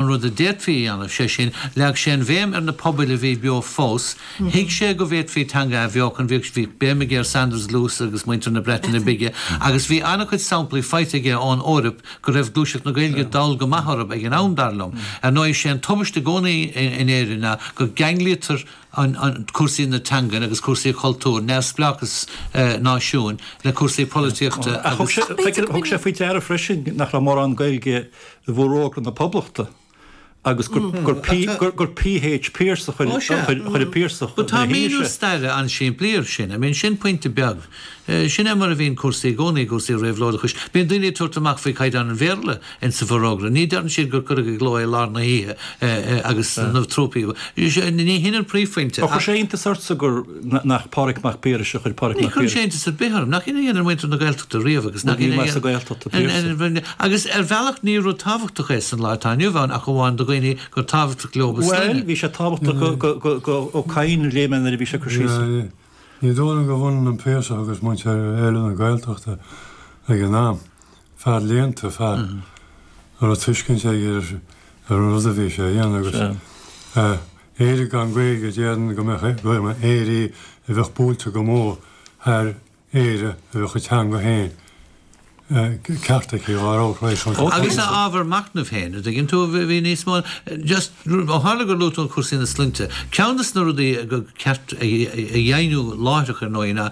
an rud a d'fhéadfaí a dhéanamh, sé sin, leag sé an bhéim ar na pobail a bhí beo fós. Thuig sé go bhféadfaí teanga a athbheochan, bhí béim aige ar Saunders Lewis agus muintir na Breataine Bige, agus bhí an-chuid samplaí faighte aige ón Eoraip go raibh gluaiseacht na Gaeilge dall go maith orthu ag an am, dar liom. Ar ndóigh, sé an tubaist i gcónaí in Éirinn ná go gceanglaítear cúrsaí na teangan agus cúrsaí cultúir, neamhspleáchas náisiúin, le cúrsaí polaitíochta agus. Ach b'fhéidir go bhfuil. Thug sé faoi deara freisin nach raibh mórán Gaeilge i bhForógra na Poblachta agus gur P.H. Pearse a chuir an Piarsach ina dhiaidh sin. Tá míniú staire an-simplí air sin. I mean, sin pointe beag. Sin é mar a bhíonn cúrsaí i gcónaí, i gcúrsaí réabhlóideachais. Bíonn daoine ag tabhairt amach faoi chaighdeán an Bhéarla in sa bhForógra. Ní deireann siad gur cuireadh i gcló é i lár na hoíche agus na trúpaí. Ní hin an príomhphointe ach. Ach chuir sé iontas ortsa gur. nach Pádraig Mac Piarais a chuir Pádraig Mac Piarais. Ní chuireann sé iontas ar bith orm. Nach shin a dhéanann muintir na Gaeltachta riamh agus nach shin a dhéanann. Agus ar bhealach ní rud tábhachtach é san lá atá inniu ann ach amháin do dhaoine gur tábhachtach leo a sloinne. Bhuel, bhí sé tábhachtach do Ó Cadhain a léigh mé nuair a bhí sé ag cur síos air. Ní dóigh liom gurbh ionann an Piarsach agus muintir eile na Gaeltachta ag an am, fear léannta, fear a raibh tuiscint aige ar an rud a bhí sé a dhéanamh agus Éire gan Gaeilge déarfainn go mbeadh gairm Éire a bheadh buailte go mór thar Éire a bheadh a teanga féin ceart aici dhá raibh tar éis an. Agus ábhar macnaimh féin, an dtuigeann tú, bhí níos mó just ó tharla gur luaigh tú an cúrsaí na sloinnte, ceann de na rudaí gur ceart a dheimhniú láithreach ar ndóigh ná,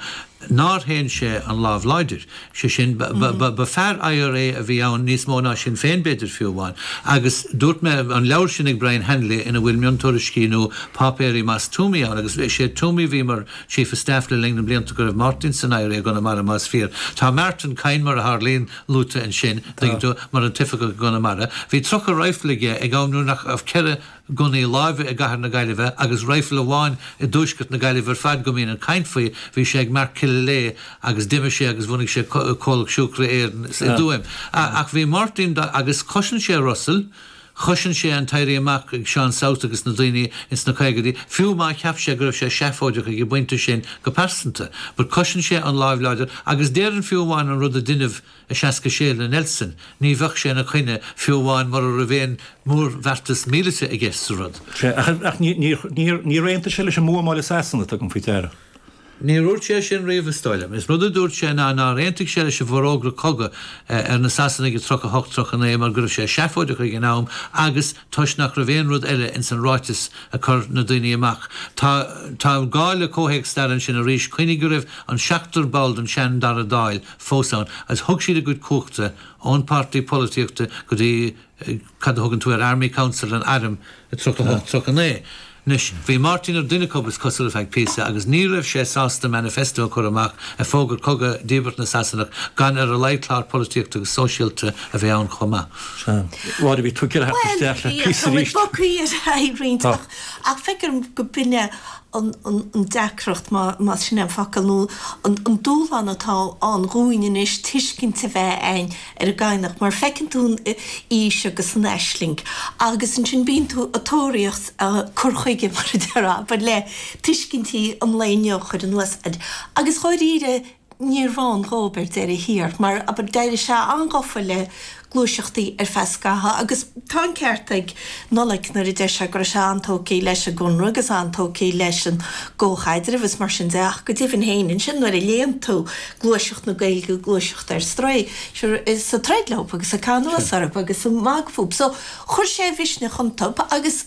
nár shéan sé an lámh láidir, sé sin, ba fear IRA a bhí ann níos mó ná Sinn Féin b'fhéidir fiú amháin, agus dúirt mé, an leabhar sin ag Brian Hanley ina bhfuil miontuairiscí nó páipéirí Moss Twomey ann, agus is é Twomey a bhí mar Chief of Staff le linn na mblianta go raibh Martin san IRA i gConamara más fíor. Tá Martin Kyne, mar a tharlaíonn, luaite ansin, tuigeann tú, mar an t-oifigeach i gConamara. Bhí tríocha raidhfil aige ag am nuair nach raibh ceithre. gunnaí láimhe i gcathair na Gaillimhe agus raidhfil amháin i dtuaisceart na Gaillimhe ar fad go mbíonn an chaint faoi, bhí sé ag Mark Killilea agus d'imigh sé agus bhunaigh sé Comhlacht Siúcra Éireann i dTuaim. Ach bhí Máirtín, agus chosain sé Russell, chosain sé an tÉirí Amach ag Seán South agus na daoine ins na caogaidí, fiú má cheap sé go raibh sé seafóideach ag an bpointe sin go pearsanta, but chosain sé an lámh láidir agus déarfainn fiú amháin an rud a deineadh, I seasca sé le Nelson ní bheadh sé ina choinne fiú amháin mura raibh aon mhórbheartas míleata i gceist sa rud. Sea, ach níor aontaigh sé leis an mbuamáil i Sasana, tugaim faoi deara. Níor úirt sé sin riamh is dóigh liom. Is rud a dúirt sé ná nár aontaigh sé leis an bhforógra cogaidh ar na Sasanaigh i dtríocha hocht tríocha naoi mar go raibh sé seafóideach ag an am agus toisc nach raibh aon rud eile ins an ráiteas a chuir na daoine amach. Tá gá le comhthéacs staire ansin arís. Cuimhnigh go raibh an seachtar ball den sean Dara Dáil, fós ann agus thug siad a gcuid cumhachta ón páirtí polataíochta go dtí cad a thugann tú ar Army Council an Airm i tríocha a hocht tríocha a naoi. Anois bhí Máirtín ar dhuine acub is cosúil ar feadh píosa agus ní raibh sé sásta manifesto a chur amach ag fógairt cogadh díbeart na Sasanach gan ar a laghad clár polataíochta agus sóisialta a bheith ann chomh maith. Mháire, bhí tú ag iarraidh a theacht isteach le píosa arís. Bhuel, bhí, tá muid bogthaí ar aghaidh roinnt ach feictear dhom go b'in é an deacracht, más sin an focal, nó an dúshlán atá ann dhúinn anois tuiscint a bheith againn ar an gCadhnach mar feiceann tú an fhís agus an aisling agus ansin bíonn tú ag tóraíocht cur chuige mar a déarfá, le tuiscintí an lae inniu a chur anuas air agus dháiríre, Níor bhain dhóib ar deireadh thiar mar abair d'éirigh sé an-ghofa le gluaiseachtaí ar feadh scatha agus tá an ceart ag Nollaig nuair a deir sé go raibh sé an-tógtha leis an gConradh agus an-tógtha leis an gcomhchaidreamh is mar sin de ach go deimhin féin ansin nuair a léann tú gluaiseacht na Gaeilge, gluaiseacht ar strae, is ag troid leob agus ag caitheamh anuas orthu agus ag magadh fúthu so chuir sé a mhisneach iontu agus.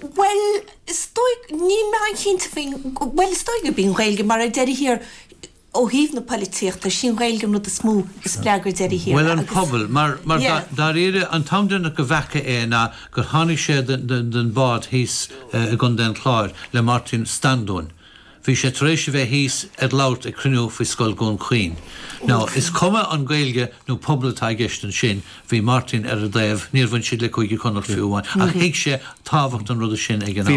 Bhuel, is dóigh, níl mé an-chinnte faoin, bhuel, is dóigh gurb í an Ghaeilge, mar ar deireadh thiar, ó thaobh na poilitíochta, is í an Ghaeilge an rud is mó a spreag ar deireadh thiar. Bhuel, an pobal, mar, mar dáiríre, an t-am deireanach go bhfaca mé é ná gur tháinig sé den bhád thíos i gContae an Chláir le Máirtín Standúin. Bhí sé tar éis a bheith thíos ag labhairt ag cruinniú faoi Scoil Dhún Chaoin. Now, is cuma an Gaeilge nó pobal atá i gceist ansin, bhí Máirtín ar a dtaobh, níor bhain siad le Cúige Connacht fiú amháin, ach thuig sé tábhacht an ruda sin ag an am.